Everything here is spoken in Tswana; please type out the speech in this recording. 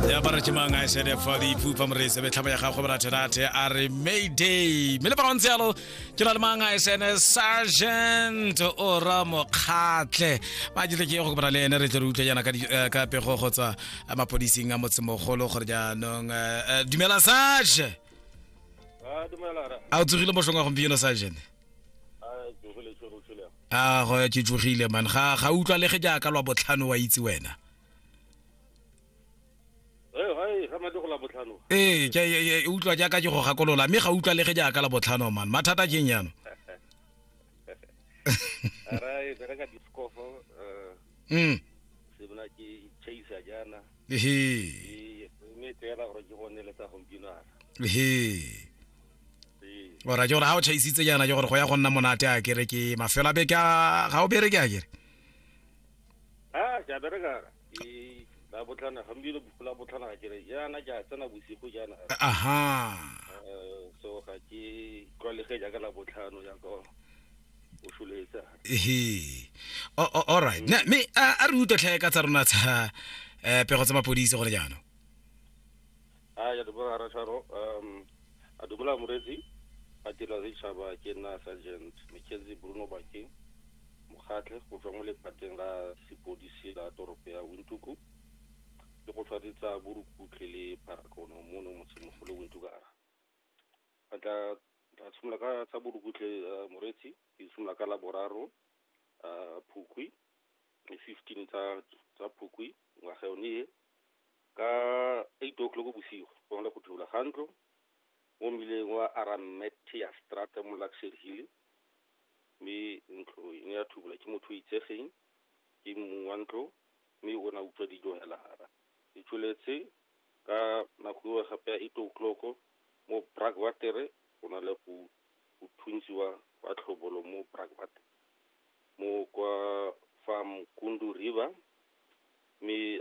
ya ba re ke mang a sede fa di ipupa morese be tlhaba ya gago boratherate a re mayday mme le ba gontse yalo ke na le mang a sene sergeant ora mokgatlhe ba jile ke go kopana le ene re tle re utlwe yana ka di- eh, ka pego go tswa eh, mapodising a motsemogolo gore jaanong eh, eh, dumela sage Ah, dumela ra. a o tsogile mošong wa gompieno sergeant Aagh ke tsogile man ga ga utlwalege jaaka lwa botlhano wa itse wena. Ee ke e utlwa jaaka ke go gakolola mme ga utlwalege jaaka la botlhano man mathata ke eng yano. Mm. Ehe. Ehe. ora ke gore ga o chaisitse jaana ke gore go ya go nna monate a kere ke mafelo a beke ga o bereke a kere ke a bereka la botlhana gompieno la botlhana ga kere jaana ke a tsena bosigo jaana aha eh, so ga ke tlwalegeng jaaka la botlhano jaaka o sholetse ehe all right mme a re utlwe tlhae ka tsa rona tsa um pego tsa mapodisi gone jaanong a ya dumela rasharo um a dumela moretsi a tela re tšhaba ke nna sergeant mckenzie bruno bakeng mokgatlhe go tswa mo lephateng la sepodisi la toropo ya wintuku le go tshwaretsa borukutlhe le pharakono mo no motshemogolo wintuku a a tla tla tshimolola ka tsa borukutlhe eh, moretsi ke tshimolola ka la boraro ah, phukwi le fifteen tsa tsa phukwi ngwaga yone e ka eight o'clock bosigo go na le go thula ga ntlo mo mmileng wa arametia strata mo luxury hill mme ntlo e ne ya thubola ke motho o itsegeng ke mong wa ntlo mme o ne a utswa dijo hela hara e tsholetse ka nako eo gape ya eight o'clock mo bragwatere go na le go go thuntsiwa wa tlhobolo mo bragwatere Mo kwa Fa Mkundu River, mme